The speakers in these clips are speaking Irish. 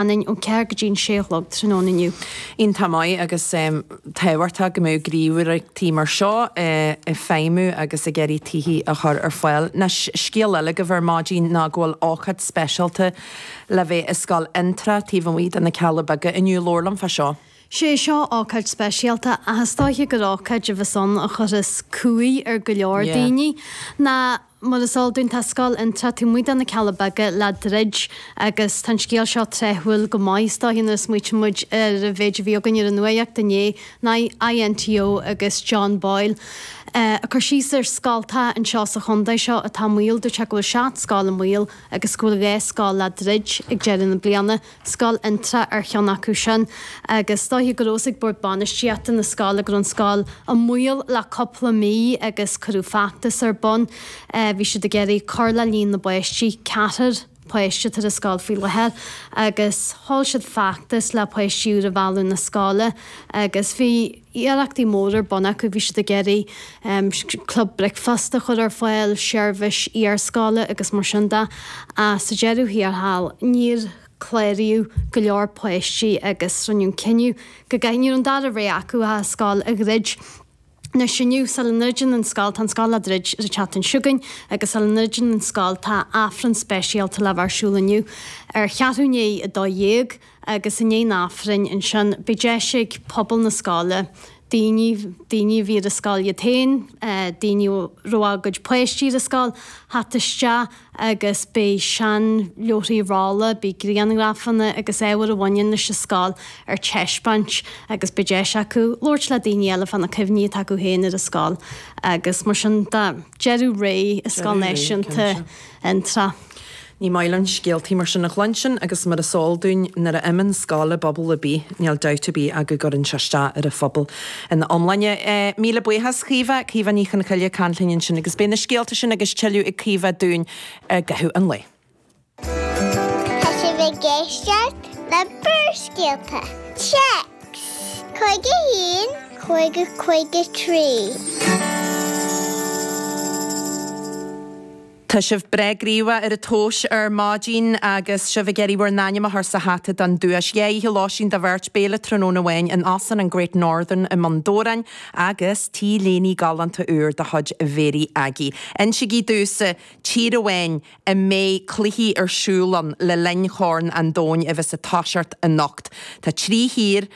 ann ón ceathair go dtí an sé a chlog tráthnóna inniu. Iontach maith agus tábhachtach go mbeadh gníomhaireachtaí mar seo ag feidhmiú agus ag iarraidh tithe a chur ar fáil. Anois, scéal eile agaibh ar maidin ná go bhfuil ócáid speisialta le bheith i Scoil Fhionntrá taobh amuigh de na Cealla Beaga inniu. Labhair liom fá seo. Sé seo ócáid speisialta ach is dóiche gur ócáid a bheas ann a chuirfeas cumhaidh ar go leor daoine. Ná Mar is eol dúinn tá Scoil Fhionntrá taobh amuigh de na Cealla Beaga le druid agus tá an scéal seo tráthúil go maith is dóiche nuair a smaoitíonn muid ar an mhéid a bhí againn ar an nuaíocht inné an INTO agus John Boyle ag cur síos ar scoltacha anseo sa chontae seo atá i mbaol dúirt sé go bhfuil seacht scoil i mbaol agus go bhfuil dhá scoil le druid ag deireadh na bliana Scoil Fhionntrá ar cheann acu sin agus is dóiche go raibh a fhios ag Bord Bainistíochta na scoile go raibh an scoil i mbaol le cúpla mí agus cuireadh feachtas ar bun. Bhí siad ag iarraidh cur le líon na bpáistí, ceathrar páiste atá ar an scoil faoi láthair, agus sheol siad feachtas le páistí úra a mhealladh na scoile agus bhí. iarrachtaí móra ar bun acu. Bhí siad ag iarraidh club bricfeasta a chur ar fáil, seirbhís iarscoile agus mar sin de ach sa deireadh thiar thall níor cláraíodh go leor páistí agus rinneadh an cinneadh go gcaithfí, nach raibh an dara rogha acu ach an scoil a dhruid. Anois inniu, sula ndruideann an scoil, tá an scoil á druid ar an tseachtain seo chugainn agus sula ndruideann an scoil tá Aifreann speisialta le bheith ar siúl inniu ar cheathrú i ndiaidh a dó dhéag. agus i ndiaidh an Aifrinn ansin beidh deis ag pobal na scoile, daoine, daoine a bhí ar an scoil iad féin, daoine a raibh a gcuid páistí ar an scoil, theacht isteach agus beidh seanleabharthaí rolla, beidh grianghrafanna agus ábhar a bhaineann leis an scoil ar taispeáint agus beidh deis acu labhairt le daoine eile fá na cuimhní atá acu féin ar an scoil agus mar sin de. Deireadh ré i Scoil Náisiúnta Fhionntrá. Ní maith linn scéaltaí mar sin a chluinstin agus mar is eol dúinn nuair a imíonn scoil i bpobal ar bith níl dabht ar bith ach go gcuireann sé isteach ar an phobal ina iomláine. Míle buíochas Caoimhe, Caoimhe Ní Chonchoille ag caint linn ansin agus beidh na scéalta sin agus tuilleadh ag Caoimhe dúinn i gcaitheamh an lae. Tá sibh ag éisteacht le Barrscéalta! Text, 51 50 53. Tá sibh breá gníomhach ar a thóis ar maidin agus sibh ag iarraidh bhur n-ainm a chur sa hata don duais. Dhá oíche lóistín do bheirt, béile tráthnóna amháin in Óstlann an Great Northern i mBun Dobhráin agus T-léine galánta úr de chuid Mhary Aggie. Insigí domhsa tír amháin a mbeidh cluichí ar siúl ann le linn Chorn an Domhain a bheas ag toiseacht anocht. Tá trí thír.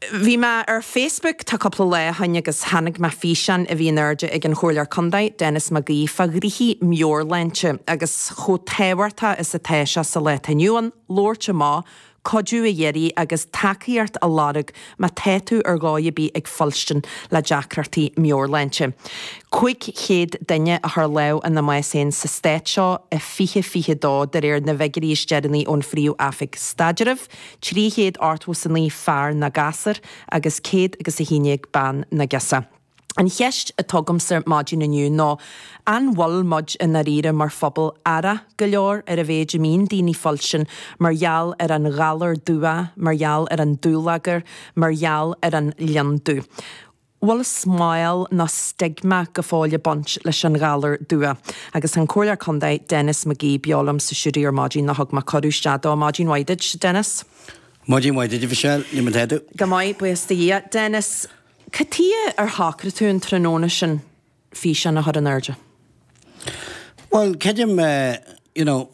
Bhí mé ar Facebook tá cúpla lá ó shin agus tháinig mé ar fhíseán a bhí in airde ag an Chomhairleoir Contae, Denis McGee, fá ghnoithí meabhairshláinte agus chomh tábhachtach is atá sé sa lá atá inniu ann, labhairt amach, cuidiú a iarraidh agus tacaíocht a lorg má tá tú ar dhóigh ar bith ag fuilstin le deacrachtaí meabhairshláinte. 500 duine a chuir lámh ina mbás féin sa Stát seo in 2022, de réir na bhfiguirí is deireanaí ón Phríomh-Oifig Staidrimh. trí chéad ochtmhó's a naoi fear nó gasúr agus céad agus a haon déag bean nó girseach. An cheist atá agamsa maidin inniu ná an bhfuil muid i ndáiríre mar phobal aireach go leor ar an mhéid a mbíonn daoine ag fuilstin mar gheall ar an ghalar dubhach mar gheall ar an dúlagar mar gheall ar an lionndubh. bhfuil smál nó stigma go fóill ag baint leis an ghalar dubhach. Agus tá an Comhairleoir Contae, Denis McGee, beo liom sa stiúideo ar maidin nó thug mé cuireadh isteach dó. Maidin mhaith duit, Denis. Maidin mhaith duit, a Mhichelle. Cad é mar atá tú. Go maith, buíochas do Dhia. Denis, cad chuige ar shocraigh tú an tráthnóna sin físeán a chur in airde? Bhuel, creidim, you know,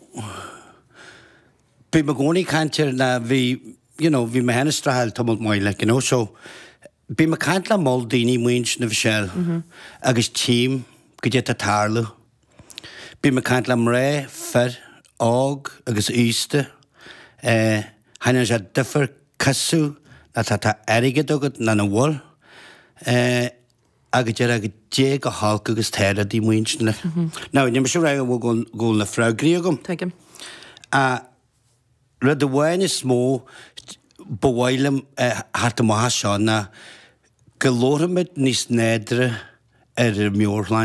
bím i gcónaí ag caint ar na, bhí, you know, bhí mé féin ag streachailt tamall maith, like, you know, so, Bím ag caint le moll daoine, you know, a Mhichelle agus tchím goidé tá ag tarlú. Bím ag caint le mná, fir, óg agus aosta. Eh, chan ann sé difear cosúil le tá tá airgead agat nó nach bhfuil. Eh, a go deir a goidé chomh holc agus tá rudaí Muintir na. Now, ní mise rá go bhfuil go bhfuil na freagraí agam. Tuigim. Ah. Rud amháin is mó ba mhaith liom a theacht amach as seo ná go labharfaimid níos nádúrtha ar an mheabhairshláinte.